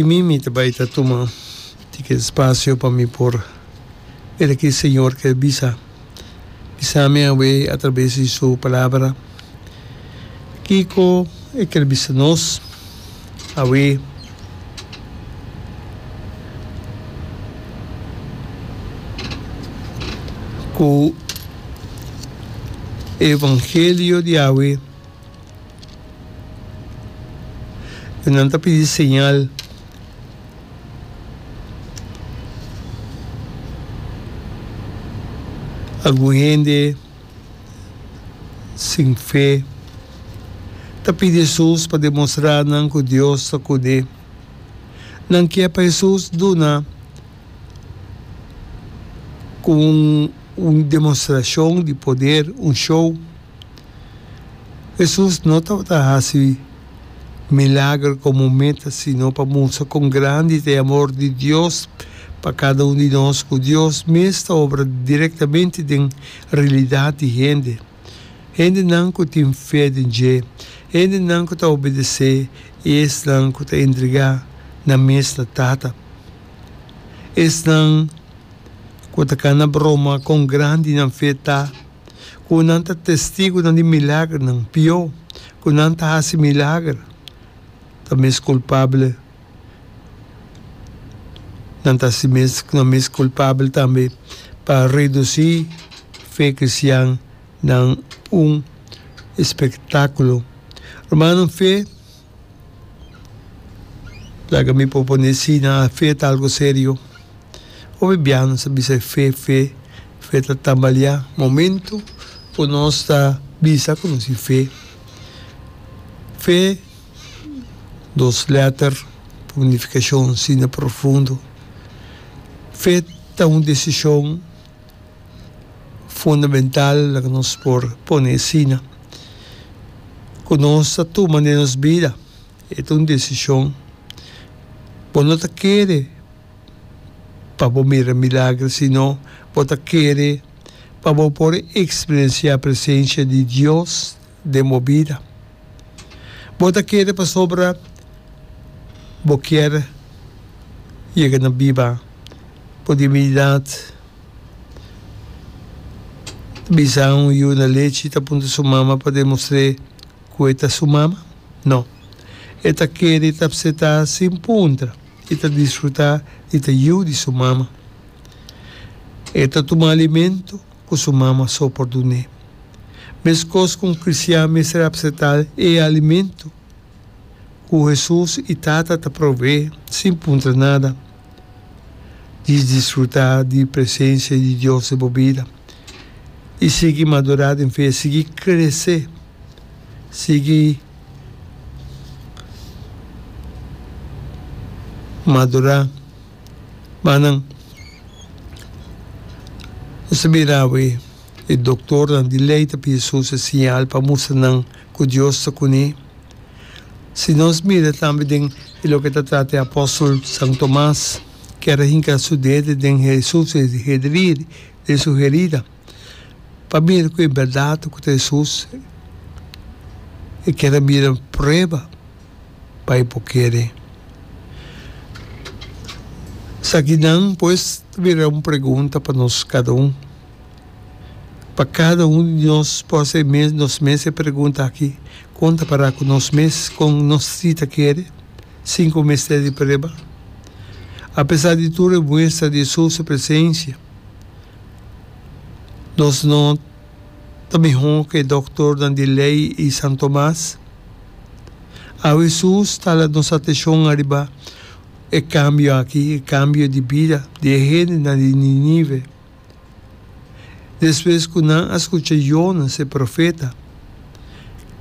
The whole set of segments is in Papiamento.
Mi mimi ta bai ta tuma di ki spasio pa mi por eda ki Señor ke bisa bisa mi awe atraves di Su Palabra kiko E ker bisa nos awe. Ku e evangelio di awe. E nan ta pidi señal. Algun hende sin fe ta pidi Hesus pa demostrá nan ku Dios ta kuné. Nan ke pa Hesus duna un demostrashon di poder, un show. Hesus no tabata hasi milager komo meta sino pa mustra kon grandi ta e amor di Dios pa kada un di nos ku Dios mes ta obra direktamente den realidat di hende, hendenan ku tin fe den dje, hendenan ku ta obedesé i esnan ku ta entregá nan mes na Tata. Esnan ku ta kana broma kon grandi nan fe ta. ku nan ta testigunan di milagernan, pió, ku nan ta hasi milager, ta mes kulpabel. Nan ta si mes nan mes kulpabel tambe pa redusí fe kristian na un espektákulo. Rumannan, fe. Laga mi propone así, na fe ta algo serio. Hopi biaha nos a bisa e fe, fe, fe ta tambaleá. Momento cu nos ta bisa cu nos tin fe, fe, dos letter cu unificacion asina profundo, fe ta un decision. fundamental ku nos por pone asina ku nos ta tuma den nos bida e ta un desishon. Bo no ta kere pa bo mira milagro sino bo ta kere pa bo por eksperensiá presensia di Dios. den bo bida. Bo ta kere pasobra bo kier yega na biba bo dimididat. Bisa un yu na lechi ta puntra su mama pa demostr'é ku e ta su mama? No. E ta kere i ta apsetá sin puntra i ta disfrutá di ta yu di su mama. E ta tuma alimentu. ku su mama so por dun'é. Meskos ku un kristian mester apseptá e alimentu ku Hesus i Tata ta proveé sin puntra nada di disfrutá di presensia di Dios den bo bida i sigui madurá den fe, sigui kresé, sigui madurá. Manan nos ta mira awe e doktornan di lei ta pidi sus e siñal pa mustra nan ku Dios ta kuné. Si nos mira tambe den e loke ta trata e apòstel San Tomas, ke a hinka su dede den Hesus, e hederir den su herida. pa mira cu e berdad cu ta Jesus e kier a mira prueba pa e por kere. Esakinan pues ta bira un pregunta pa nos cada un. Pa cada un di nos por hacer nos mes e pregunta aki, Con ta para cu nos mes? Con nos si ta kere sin cu mester di prueba? Apesar di tur e muestra di Jesus su presencia. Nos no ta mihó ke doktornan di lei i San Tomas. Awe Hesus ta ala nos atenshon ariba e kambio aki, e kambio di bida di e hendenan di Ninive. Despues ku nan a skucha Jonas, e profeta,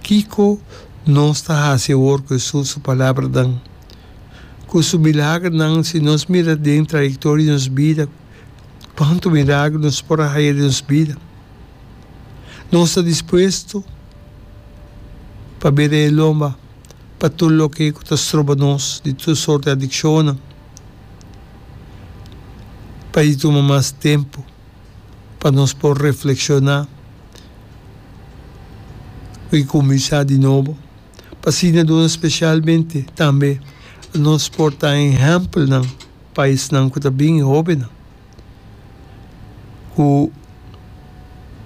kiko nos ta hasi awor ku Hesus su palabranan, ku su milagernan? Si nos mira den trayektoria di nos bida, pa huntu miragro nos por a haya den nos bida. Nos ta dispuesto pa bira e lomba pa tur loke cu ta stroba nos di tur sort di adiccionnan, pa e tuma mas tempo pa nos por reflexiona cu e cuminsha di nobo. pa siñadunan spesialmente tambe nos por ta ehèmpelnan pa esnan ku ta bin, e hóbennan, ku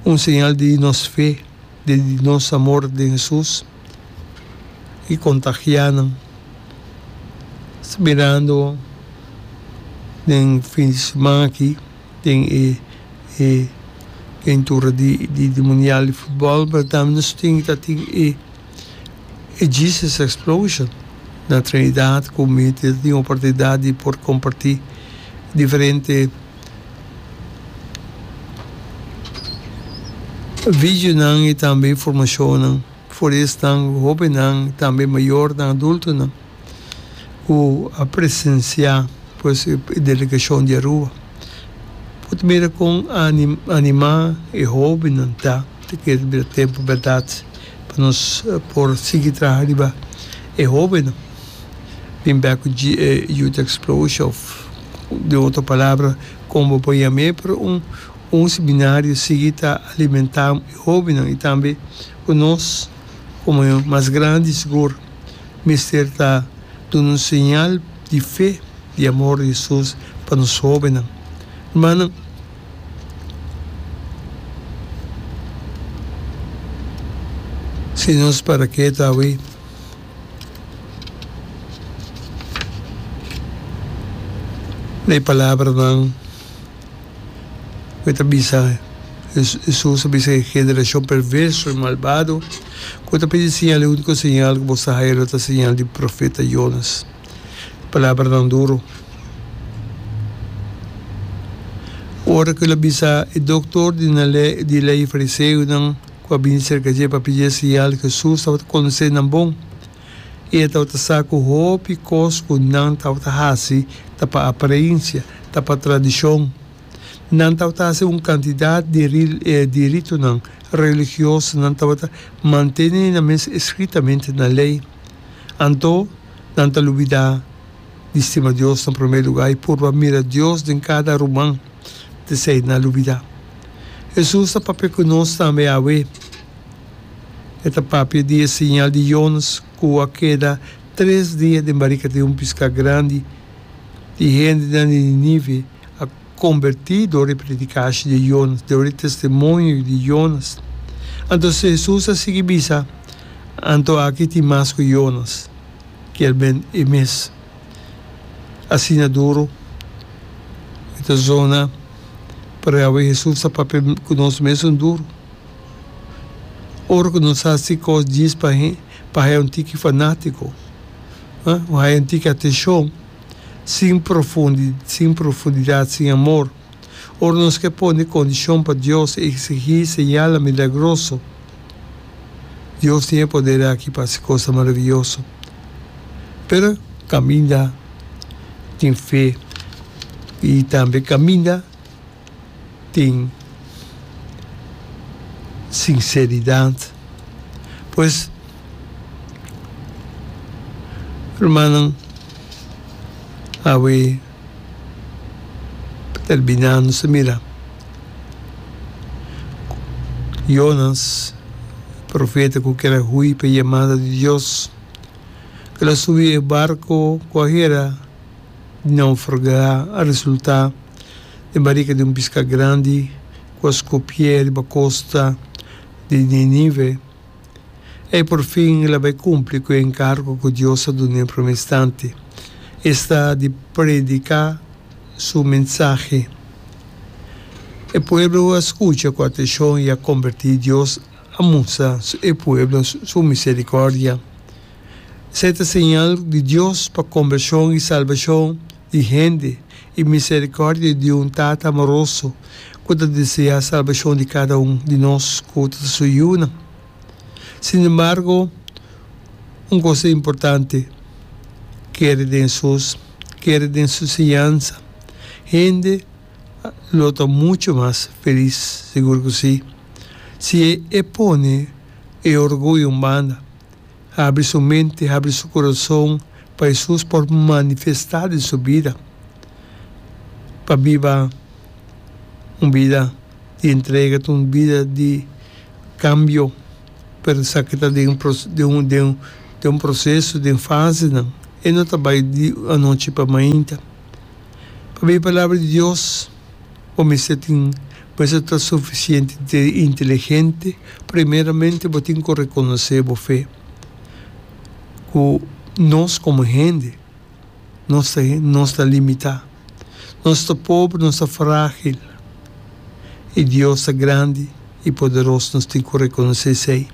un señal di nos fe, di nos amor den Hesus i kontagiá nan mirando den fin di siman aki. Den e pintura di di mundial di futbòl Bertam nos tin ta tin e e Jesus explosion na Trinidad ku mi ta tin oportunidat di por kompartí diferente videonan i tambe informashonnan for di esnan hobennan tambe mayornan adultonan. ku a presensiá pues e delegashon di Aruba. Bo ta mira kon animá e hóbennan ta te kere bira tempu bèrdat pa nos por sigui traha riba e hóbennan. Bin bèk ku Youth Explosure òf di un otro palabra kon bo por yam'é pa un seminario sigui ta alimentá e hóbennan i tambe ku nos komo mas grandi sigur. mester ta duna un señal di fe, di amor di Hesus pa nos hobennan. Rumannan, si nos para ketu awe, na e palabranan. cu e ta bisa, Hesus a bisa, E generacion perverso i malbado, cu bo ta pidi siñal, e unico siñal cu bo sa haya lo ta siñal di profeta Jonas. Palabranan duro. Ora cu el a bisa, e doctor di ley i fariseonan cu a bini cerca dje pa pidi e siñal, Hesus tabata conoce nan bon. i e tabata sa ku hopi kos ku nan tabata hasi ta pa aparensia, ta pa tradishon. Nan tabata hasi un kantidat di di ritonan religioso, nan tabata mantene nan mes eskritamente na lei. Anto, nan ta lubidá di stima Dios na promé lugá i purba mira Dios den kada ruman, p'esei nan lubidá. Hesus ta papia ku nos tambe awe. E ta papia di e siñal di Jonas ku a keda tres dia den barika di un piska grandi. E hendenan di Ninive a kombertí dor e predikashi di Jonas, dor e testimonio di Jonas. Anto Hesus a sigui bisa, Anto aki tin mas ku Jonas, kier ben e mes. Asina duru e ta zona, parehawe Hesus ta papia ku nos mes un duru. Ora ku nos a si kos djis pa he, pa haya un tiki fanátiko, ha, o haya un tiki atenshon, sin profundi, sin profundidat, sin amor. Ora nos ke pone kondishon pa Dios, eksigí señalnan milagroso, Dios tin e poder aki pa hasi kosnan maravioso. Pero, kaminda tin fe i tambe kaminda. tin sinceridad pues rumannan awe pa terbina nos ta mira Jonas profeta cu kera hui pa yamada di Dios el a subi e barco cu ayer a naufraga a resulta. den barika di un piská grandi ku a skopié riba kosta di Ninive. E porfin el a bai kumpli ku e enkargo ku Dios a dun'é promé instanti, esta di prediká su mensahe. E pueblo a skucha ku atenshon i a kombertí. Dios a mustra e pueblo su miserikòrdia. Esei ta señal di Dios pa kombershon i salbashon. di hende i miserikòrdia di di un Tata amoroso ku ta desea salbashon di kada un di nos ku ta ta su yunan. Sinembargo, un kos importante, kere den Hesus, kere den su enseñansa, hende lo ta muchu mas felis, sigur ku sí, si e pone e orguyo un banda. Habri su mente, habri su corazon pa Jesus por manifesta den su bida, pa biba un bida di entrega, un bida di cambio. Pero sa ki ta den den un proceso, den fasenan, e no ta bay di anochi pa mainta. Pabia e palabra di Dios. Bo mester tin, mester ta sufisiente te inteligente, primeramente bo tin ku rekonosé bo fe, ku nos komo hende nos ta nos ta limitá, nos ta pobre, nos ta frágil, i Dios ta grandi i poderos, nos tin ku rekonosé esei.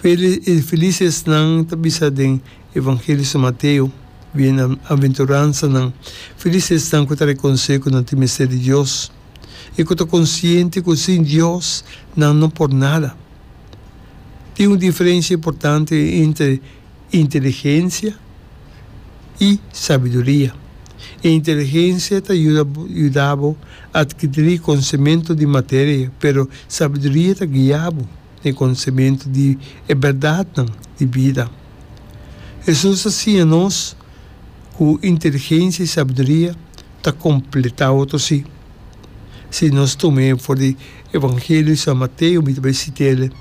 Felis felis esnan ta bisa den. Evangelio San Mateo, Bienaventuransanan felis esnan ku ta rekonosé ku nan tin mester di Dios i ku ta konsiente ku sin Dios nan no por nada. Tin un diferensia importante entre inteligensia i sabiduria. E inteligensia ta yuda bo yuda bo adkirí konsementu di materia, pero sabiduria ta guia bo. den konosementu di e bèrdatnan di bida. Hesus a siña nos ku inteligensia i sabiduria ta kompletá otro sí. Si nos tuma e for di Evangelio di San Mateo mi ta bai si tele,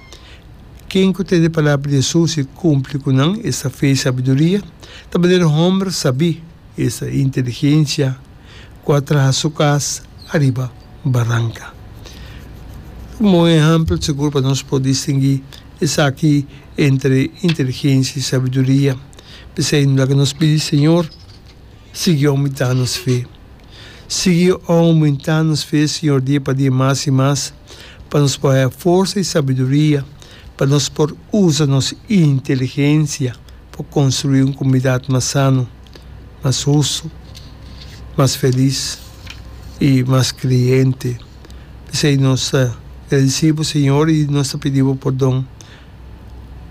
Ken ku tene palabra di Hesus i kumpli ku nan, esta fe i sabiduria. Ta manera hòmber sabí, esta inteligensia. ku a traha su kas ariba baranka. Un bon ehèmpel sigur pa nos por distinguí esaki entre inteligensia i sabiduria. P'esei no laga nos pidi Señor, sigui oumentá nos fe. Sigui oumentá nos fe, Señor, dia pa dia mas i mas, pa nos por haña forsa i sabiduria, pa nos por usa nos inteligensia pa konstruí un komunidat mas sano. mas hustu, mas felis i mas kreyente. P'esei nos ta gradisí bo, Señor, i nos ta pidi bo pordon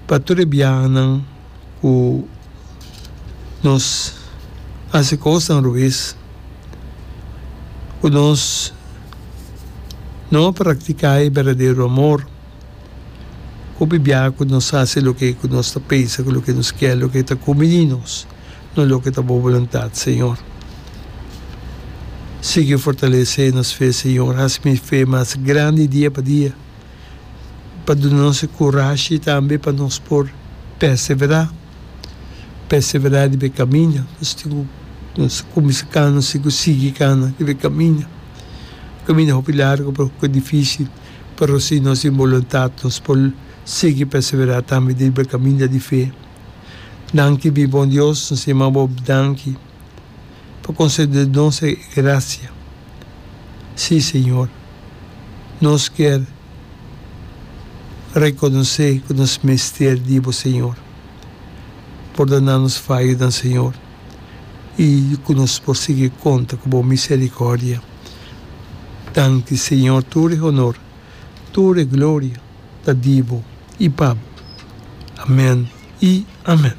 pa tur e biahanan ku nos hasi kosnan robes, ku nos no a praktiká e berdadero amor. Hopi biaha cu nos haci loke cu nos ta pensa cu loke nos kier loke ta cumini nos, no loke ta bo boluntad, Señor. Sigui fortalece nos fe, Señor. Haci mi fe mas grandi dia pa dia, pa duna nos e curashi tambe pa nos por persevera, persevera riba e caminda nos tin cu nos cuminsa cana, nos tin cu sigui cana riba e caminda. Caminda hopi largo pero hopi dificil. Pero si nos tin boluntat, nos por sigui perseverá tambe dentro b'e kaminda di fe. Nan ki bin bon Dios, nos yama bo danki pa konsede nos e grasia. Sí, Señor, nos kier rekonosé ku nos mester di bo, Señor. Pordona nos fayonan, Señor. i ku nos por sigui konta ku bo miserikòrdia. Danki, Señor, tur e honor, tur e gloria ta di bo i pa bo. Amèn i amèn.